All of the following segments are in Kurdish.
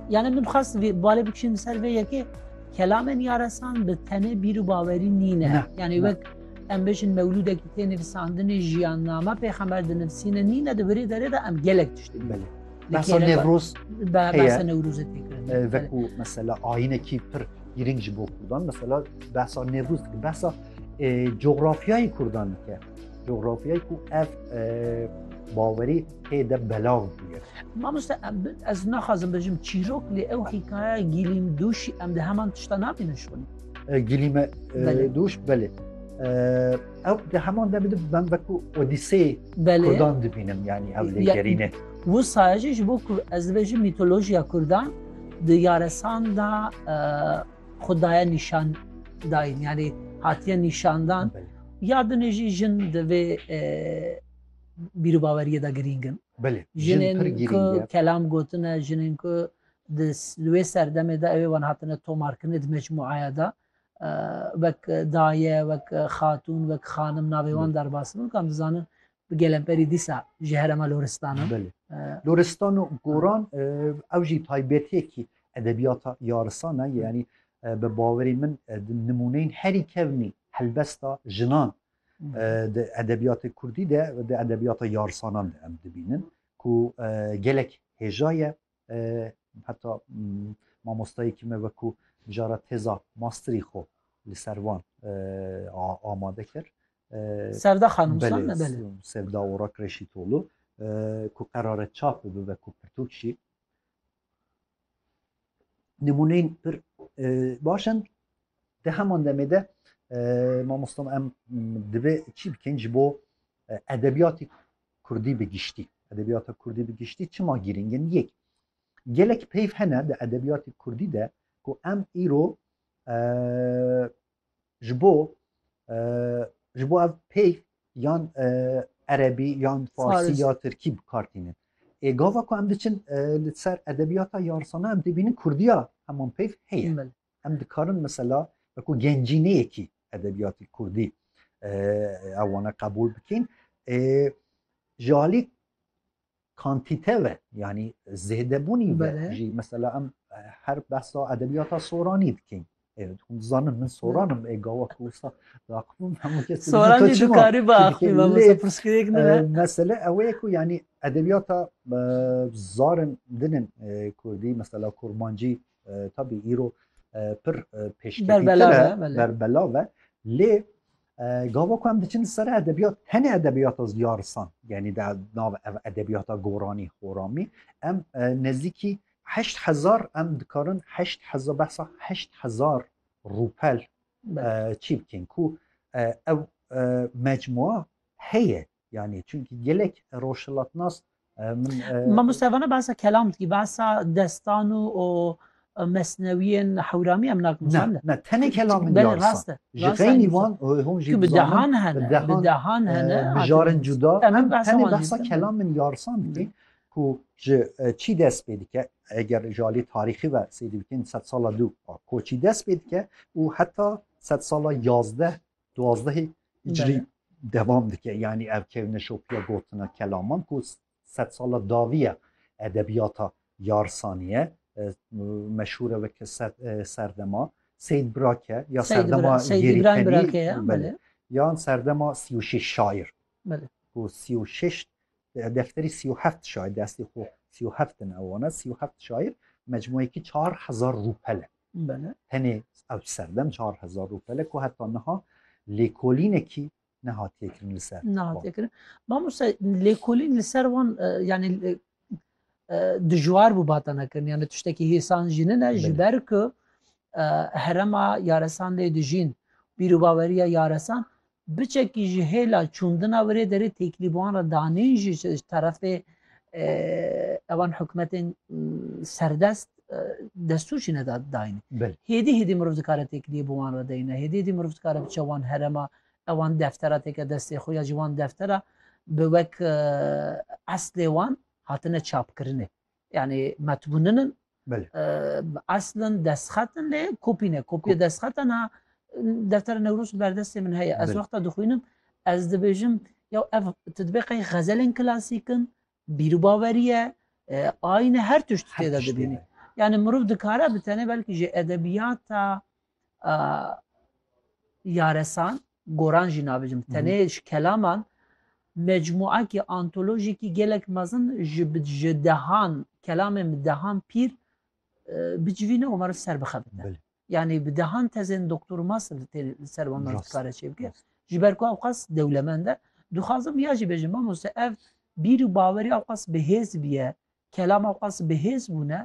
Yani min xas balê bikişin ser vê yekê kelamên yaresan bi tenê bîr û bawerî nîne. Yani wek em bêjin mewlûdekî tê nivîsandinê jiyanname pêxember di nivîsîne nîne di birê derê de em gelek tiştî bile. Behsa Nevruz behsa Nevruzê têkirin. Vekû mesela ayînekî pir girîng ji bo Kurdan mesela behsa Nevruz dike behsa coğrafyayê Kurdan dike. Coğrafyayı ku ev e, baweri tê de belav bûye. Mamoste em bi- ez naxwazim bijim çîrok lê ew hîkaya gîlîn dûşî em di heman tişta nabînin ji wan. E, Gilîme e, Belê. dûş belê. E, ew di heman demê de ben veku Odîseyê Belê. Kurdan dibînim yani ev lê Ya- gerîne. Bu sayacı ji bo ku ez dibêjim mitolojiya Kurdan di yaresan da e, xudaya nîşan dayîn yani hatiye nîşandan Belê. Ya dinê jî jin di vê bîrûbaweriyê de girîng in. Belê, jin pir girîng e. Jinên ku kelam gotine, jinên ku di li wê serdemê de ew ê wan hatine tomarkirinê di mecmûeya de wek daye, wek xatûn, wek xanim navê wan derbas bin. Kan dizanin Bi gelemperî dîsa ji herêma Loristan e. Belê. Loristan û Goran ew jî taybetiyekî edebiyata yarisan e. Yanî bi bawerî min nimûneyên herî kevnî helbesta jinan di edebiyatê kurdî de di edebiyata yarisanan de em dibînin ku gelek hêja ye Heta mamostayekî me wekû mijara têza masterî xwe li ser van amade kir. Sevda xanûm Sevda Orak Reşîtolû ku qerare çap bibe wekû pirtûk jî nimûneyên pir baş in di heman demê de mamosta em divê çî bikin ji bo edebiyatî Kurdî bi giştî, edebiyata Kurdî bi giştî çima girîng in? Yek, gelek peyv hene di edebiyatê Kurdî de ku em îro ji bo ji bo ev peyv yan erebî yan farsî ya tirkî bikartînin. Ê gava ku em diçin li ser edebiyata yarsana em dibînin Kurdiya heman peyv heye. Em dikarin mesela wekû gencîneyekî edebiyatî kurdî ew wana qebûl bikîn. Ji alî kantîte ve yanî zêdebûnî ve jî mesela em her behsa edebiyata soranî dikîn. Evet, hûn dizanin min soranim ê gawa ku wisa daqibim hemû kes soran jî dikarî biaxivî me mesela pirsgirêk ne mesele ew ê ku yanî edebiyata zarin dinin kurdî mesela kurmancî Tabi îro pir pêşketî berbela ve lê gava ku em diçin di ser edebiyat tenê edebiyata ziyarisan yanî de nav ev edebiyata goranî xoramî em nezîkî heşt hezar em dikarin heşt heza behsa heşt hezar rûpel çî bikên ku ew mecmua heye yani çünkü gelek roşhilatnas e, min e, Ma Mustafa'na bahsa kelam ki bahsa destanu o e, mesneviyen hewrami em nakim ne sandı. ne tene kelamın Beli yarısa. raste. Ji Raste xeynî aynı wan e, hûn jî Ki bi dizanin, dehan hene. bi dehan, Bi dehan e, hene. bi jarin cuda Em em behsa tenê wan behsa dîtin. kelamên yarsan dikîn ku ji e, çî dest pê dike eger ji alî tarîxî ve sêdî bikîn sed sala dû a koçî dest pê dike û heta sed sala yazdeh Duwazdehê îcrî devam dike yanî ev kevneşopiya gotina kelaman ku sed sala dawî ye edebiyata yarsaniye meşhûre weke serdema Seyid Birake ya serdema Yerîtenî yan serdema sî û şeş şair ku sî û şeş Defterî sî û heft şair di eslê xwe sî û heft in ewana sî û heft şair mecmueyekî çar hezar rûpel e. Tenê ew serdem çar hezar rûpel e ku heta niha lêkolînekî nehatiye kirin li ser. Nehatiye kirin. Mamoste lêkolîn li ser wan yani dijwar bû batana kirin yani tiştekî hêsan jî nine ji ber ku herema yaresan lê dijîn bîrûbaweriya yaresan Biçekî ji hêla çûndina wir ê derê têkilî bi wan re danîn jî ji terefê evan hikûmetên serdest destûr jî neda dayîn. Hêdî hêdî mirov dikare têkiliyê bi wan re deyne. Hêdî hêdî mirov dikare biçe wan herema ewan deftera têke destê xwe ya ji wan deftera bi wek eslê wan hatine çapkirinê. Yani metbuninin eslin destxetin lê kopî ne kopî destxetin ha deftera Newroz berdestê min heye ez wexta dixwînim ez dibêjim ya ev tu dibê qey xezelên klasîkin bîrûbaweriye ayine her tişt têde dibînî yani mirov dikare bi tenê belkî jê edebiyata yaresan goran jî nabijim tenê ji kelaman mecmuakî antolojîkî gelek mezin ji ji dehan kelamên bi dehan pîr bicivîne û meriv ser bixebite yanî bi dehan tezên doktor û master li tê li ser wan kare çê bike ji ber ku ew qas dewlemend e dixwazim ya jî bêjim mamoste ev bîr û bawerî ew qas bi hêz biye Kelama Qas bi hêz bûne,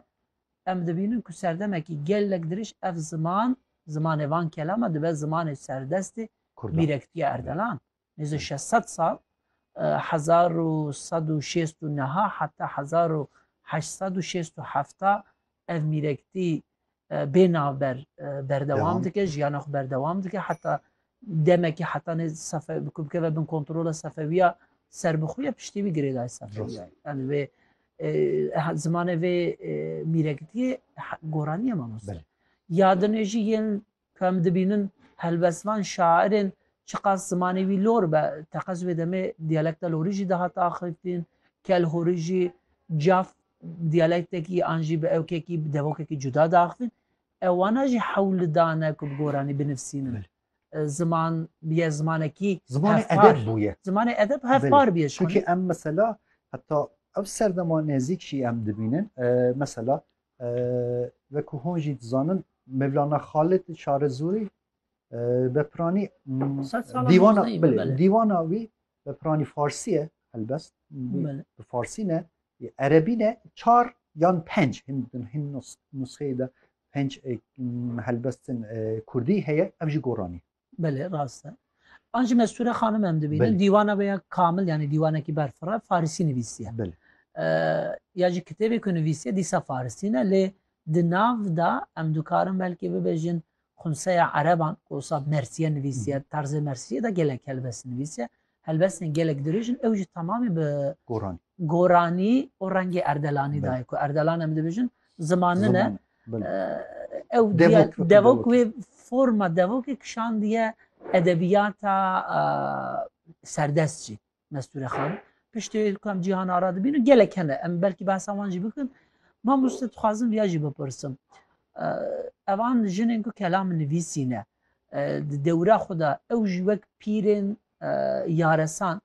em dibînin ku serdemekî gelek dirêj ev ziman, zimanê van kelama dibe zimanê serdestê Mîrektiya Erdelan. Nêzî şeş sed sal, hezar û sed û şêst û neha heta hezar û heşt sed û şêst û hefta ev mîrektî bê navber berdewam dike jiyana xwe berdewam dike heta demekî hetanê sefe bikeve bin kontrola sefewiya serbixuya piştî wî girêday sefewiya yani vê zimanê vê mîrekitiyê goraniye manos yadinê jî yên ku em dibînin helbestvan şairên çiqas zimanê wî lor be teqez wê demê diyalekta lorî jî dihata axifîn kel horî jî caf Diyalektekî an jî bi ewkekî, bi devokekî cuda diaxivin. Ew wana jî hewl lidane ku bi goranî binivîsînin. Ziman bûye zimanekî hevpar. Zimanê edeb hevpar bûye. Çunkî em mesela heta ev serdema nezîk jî em dibînin. Mesela wekû hûn jî dizanin Mevlana Xalid li Çarezûrî Bepranî dîwana wî Bi piranî farsî ye helbest bi farsî ne erebî ne çar yan penc hin hin nusxeyê de penc helbestin kurdî heye ev jî goranî Belê rast e An ji Mesûre xanim em dibînin dîwana veya kamil yanî dîwanekî berfira farisî nivîsiye ya jî kitêbê ku nivîsiye dîsa farisî ne lê di nav de em dikarin belkî bibêjin Xunseya ereban ku wisa mersiye nivîsiye, bi tarzê mersiyê de gelek helbest nivîsiye. Helbestên gelek dirêj in, ew jî temamê bi Goranî. Goranî û rengê erdelanî de ye ku erdelan em dibêjin ziman min e. Ew devok wê forma devokê kişandiye edebiyata serdest jî. Mesture Xan. Piştê ku em cîhan ara dibînin gelek hene em belkî behsa wan jî bikin. Mamoste dixwazim viya jî bipirsim. Evan jinên ku kelam nivîsîne di dewra xwe de ew jî wek pîrên yaresan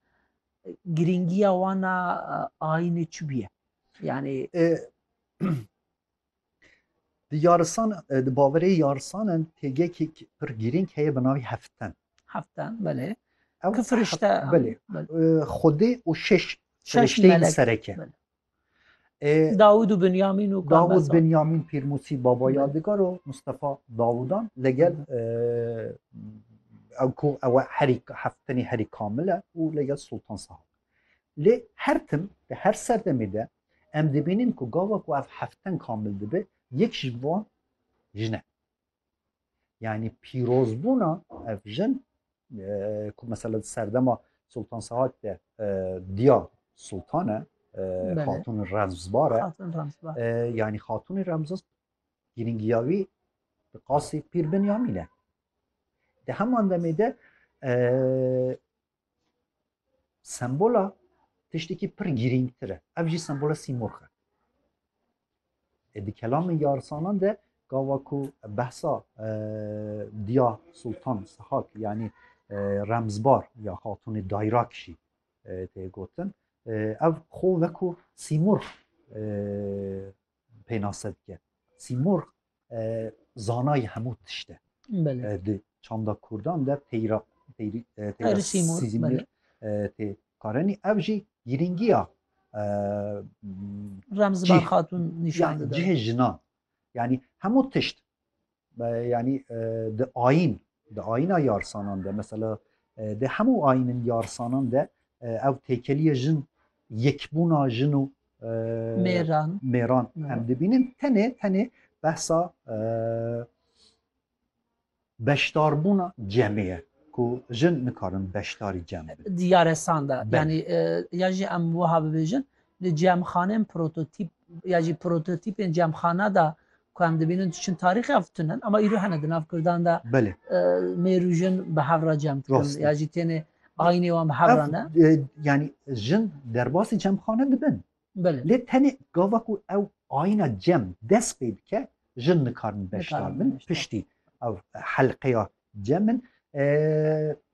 girîngiya wana ayînê çi bûye? Yani Di yarisan, di baverê yarisanan têgekek pir girîng heye bi navî heften. Heften, belê. Ew Ki firişte. Belê. Xwedê û şeş firişteyên sereke. Dawud û Binyamin û Dawud Binyamin Pîrmusî baba yadigar û Mustafa Dawudan legel ew ku ew herî heftenî herî kamil e û legel Sultan Sahab. Lê her tim di her serdemê de Em dibînin ku gava ku ev hefteng kamil dibe yek ji wan jin e. Yanî pîrozbûna ev jin ku mesela di serdema Sultan Sehak de diya Sultan e xatûnê remzbar e yanî xatûnê remzbar girîngiya wî di qasî pîr Binyamîn e. Di heman demê de Sembola tiştekî pir girîngtir e. Ev jî sembola sîmorx e. E di kelamê yarsanan de gava ku behsa e, diya Sultan Sihak yanî e, remzbar ya xatunê dayrak jî e, tê gotin. E, ev xo wekû sîmorx pênase dike. Sîmorg zanayê hemû tişt e. Di çanda Kurdan de teyra teyra Sîmorg tê karenî ev jî girîngiya Remziban Xatun nîşan dide. Cihê jinan. Yani hemû tişt Yanî di ayîn, di ayîna yarsanan de mesela di hemû ayînin yarsanan de ev têkeliye jin yekbûna jin û mêran mêran em dibînin tenê tenê behsa beşdarbûna cemê ye ku jin nikarin beşdarî cem diyare sanda yanî ya jî em wiha bibêjin Di cemxanên prototîp ya jî prototîpên cemxana de ku em dibînin tu çin tarîxê ev tune ne ama îro hene di nav Kurdan de Belê. mêrû jin bi hev re cem dikin Rastî. ya jî têne ayînê wan bi hev re ne. Ev e, yanî jin derbasî cemxane dibin. Belê. Lê tenê gava ku ew ayîna cem dest pê dike jin nikarin beşdar Nikarin bin beşdar. piştî ew helqeya cem in. E,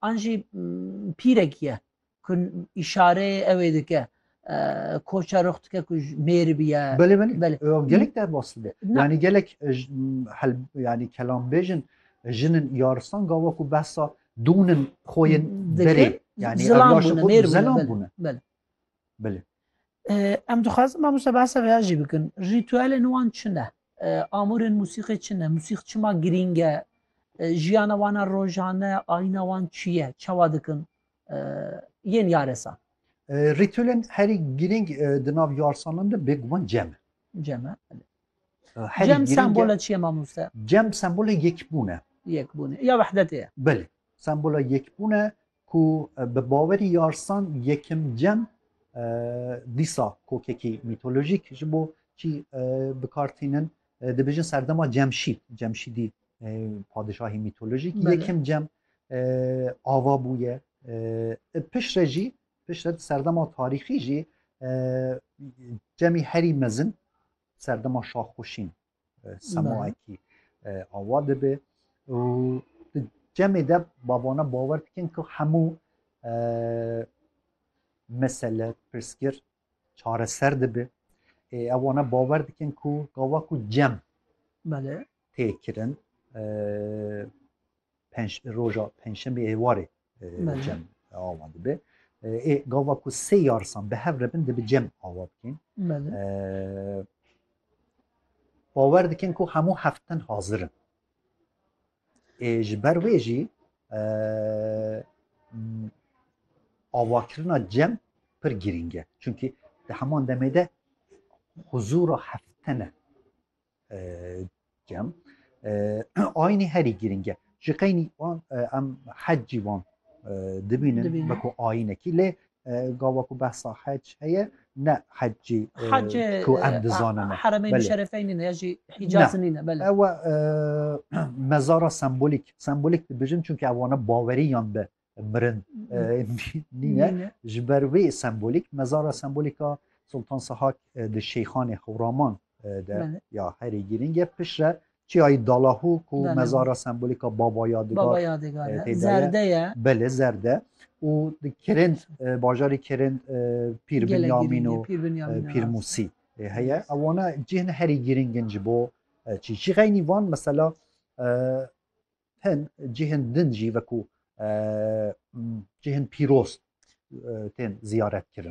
an jî pîrek ye ku îşareyê ew ê dike koça rux dike ku mêr biye belê belê gelek derbas dibe yanî gelek yanî kelambêjin jinin yaristan gava ku behsa dûnin xwe yên derê yanî zilam bûne mêr bûne belê belê Em dixwazin mamoste behsa vêya jî bikin. Rîtuelên wan çi ne? Amûrên musîqê çi ne? Musîq çima girîng e? Jiyana wan a rojane, ayîna wan çi ye? Çawa dikin? Yên yaresan. Rîtuelên herî girîng di nav yarsanan de bêguman cem e. Cem e. Cem sembola çi ye mamoste? Cem sembola yekbûn e. Yekbûn e. Ya wehdetê ye. Belê. Sembola yekbûn e, ku bi bawerî yarsan yekim cem dîsa kokekî mîtolojîk ji bo çî bikar tînin dibêjin serdema Cemşîd Cemşîdî padişahî mîtolojîk yekim cem ava bûye piştre jî piştre serdema tarîxî jî cemî herî mezin serdema şaxxuşîn semaekî awa dibe û di cemê de bavana bawer dikin ku hemû mesele pirsgir çareser dibe ewana bawer dikin ku gava ku cem tê kirin penc roja pençemê êwarê cem awa dibe. Ê gava ku sê yarsan bi hev rebin dibi cem awa bikên. Bawer dikin ku hemû heftin hazirin. Ê ji ber wê jî avakirina cem pir girîng e. Çunkî di heman demê de huzûra heftene Cem aynî herî girîng e. Ji qeynî wan em hec jî wan dibînin weko ayînekî lê gava ku behsa hec heye ne hec jî ku em dizanin heremeyî şerefeynî ne jî hîcazî nîne ewe mezara sembolîk sembolîk dibijin çunke ew wana bawerî yan bi mirin nîne ji ber wê sembolîk mezara sembolîka Sultan Sehak di Şeyxanê Hewraman de ya herî girîng e pişre çiyayî Dalahu ku mezara sembolîka baba yadigar zerde ye belê zerde û di kirind bajarî kirind pîr binyamîn û pîr musî heye ewana cihne herî girîngin ji bo çî jî xeynî van mesela tên cihên din jî wekû cihên pîroz tên ziyaretkirin.